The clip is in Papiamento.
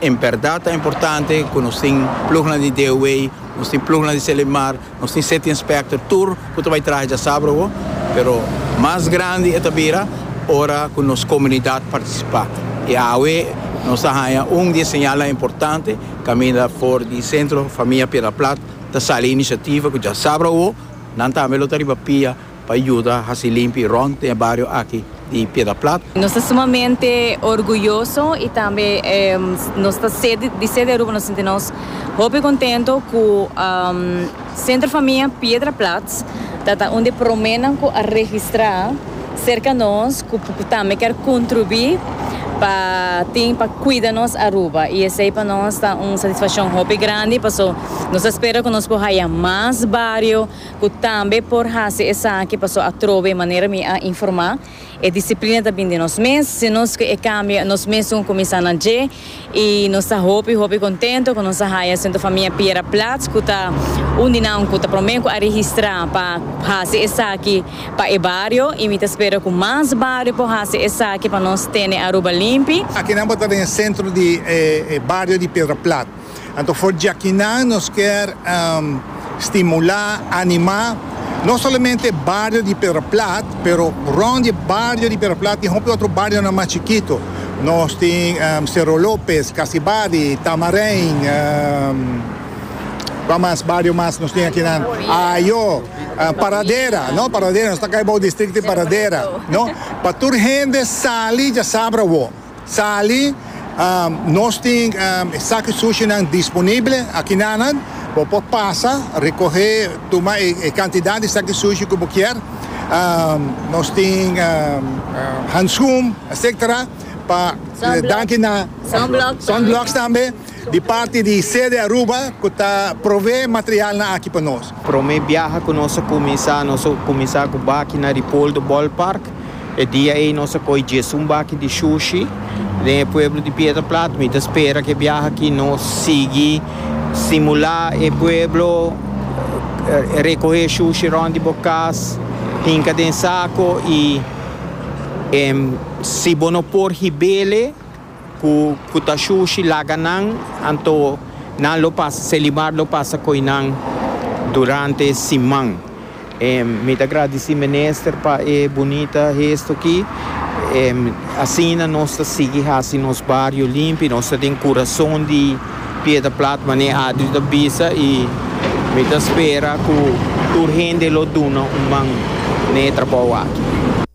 En bèrdat ta importante ku nos tin plugnan di DOW, nos tin plugnan di Selimar, nos tin City Inspector, tur ku ta bai traha dja sabra bo, pero mas grandi e ta bira ora ku nos komunidat partisipá. I awe nos a haña un di e señalnan importante kaminda for di Sentro Famia Piedra Plat ta sali inisiativa ku djasabra awo nan tambe lo ta riba pia, Pa yuda hasi limpi rònt den e bario aki di Piedra Plat. Nos ta sumamente orguyoso i tambe nos ta ser di ser di Aruba nos sinti nos hopi kontento ku Sentro Famia Piedra Plat ta ta un di e promènan ku a registrá serka nos ku tambe kèr kontribuí pa tin pa kuida nos Aruba i esei pa nos ta un satisfakshon hopi grandi paso nos ta spera ku nos por haya mas bario Ku tambe por hasi esaki paso atrobe manera mi a informá e disiplina ta bin di nos mes, si nos ke e kambio nos mesun a kuminsá na dje i nos ta hopi hopi kontento ku nos a haya Centro Famia Piera Plats ku ta un di nan ku ta promé ku a registrá pa hasi esaki pa e bario i mi ta spera ku mas bario por hasi esaki pa nos tene Aruba limpi. Akinan bo ta den e sentro di e bario di Piedra Plat. Anto for djakinan nos kier stimulá, animá no solamente bario di Pedra Plat pero rond di e bario di Pedra Plat tin hopi otro barionan mas chikito. Nos tin Cerro Lopez, Casibadi, Tamarin, kua mas bario mas nos tin akinan, Ajo, Paradera, no, Paradera, nos ta kai bou distrikto di Paradera, no. Pa tur hende sali djasabra awo. Sali, Nos tin e saki sushinan disponible akinanan. Bo por pasa, rekohé, tuma e kantidat di saki sushi ku bo kier. Nos tin hanskun, etcetera, pa danki na. Sunblocks tambe. Di parti di Sede Aruba cu ta prove material na aki pa nos. Prome biaha cu nos a cuminsa, nos a cuminsa cu baki na Ripoldo Ballpark. E dia ey nos a coge djesun baki di shushi den e pueblo di Piedra Plat. Mi ta spera cu e biaha aki nos sigui stimula e pueblo, recoge shushi rond di bo cas, hinca den saco y si bo no por hibele, Ku ku ta shushi laga nan, anto nan lo pasa, Selimar lo pasa koi nan durante e siman. Mi ta gradisí Minister pa e bunita hesto ki. Asina nos ta sigui hasi nos bario limpi, nos ta den kurason di Piedra Plat, mane Adri ta bisa, i mi ta spera ku tur hende lo duna un man na e trabou aki.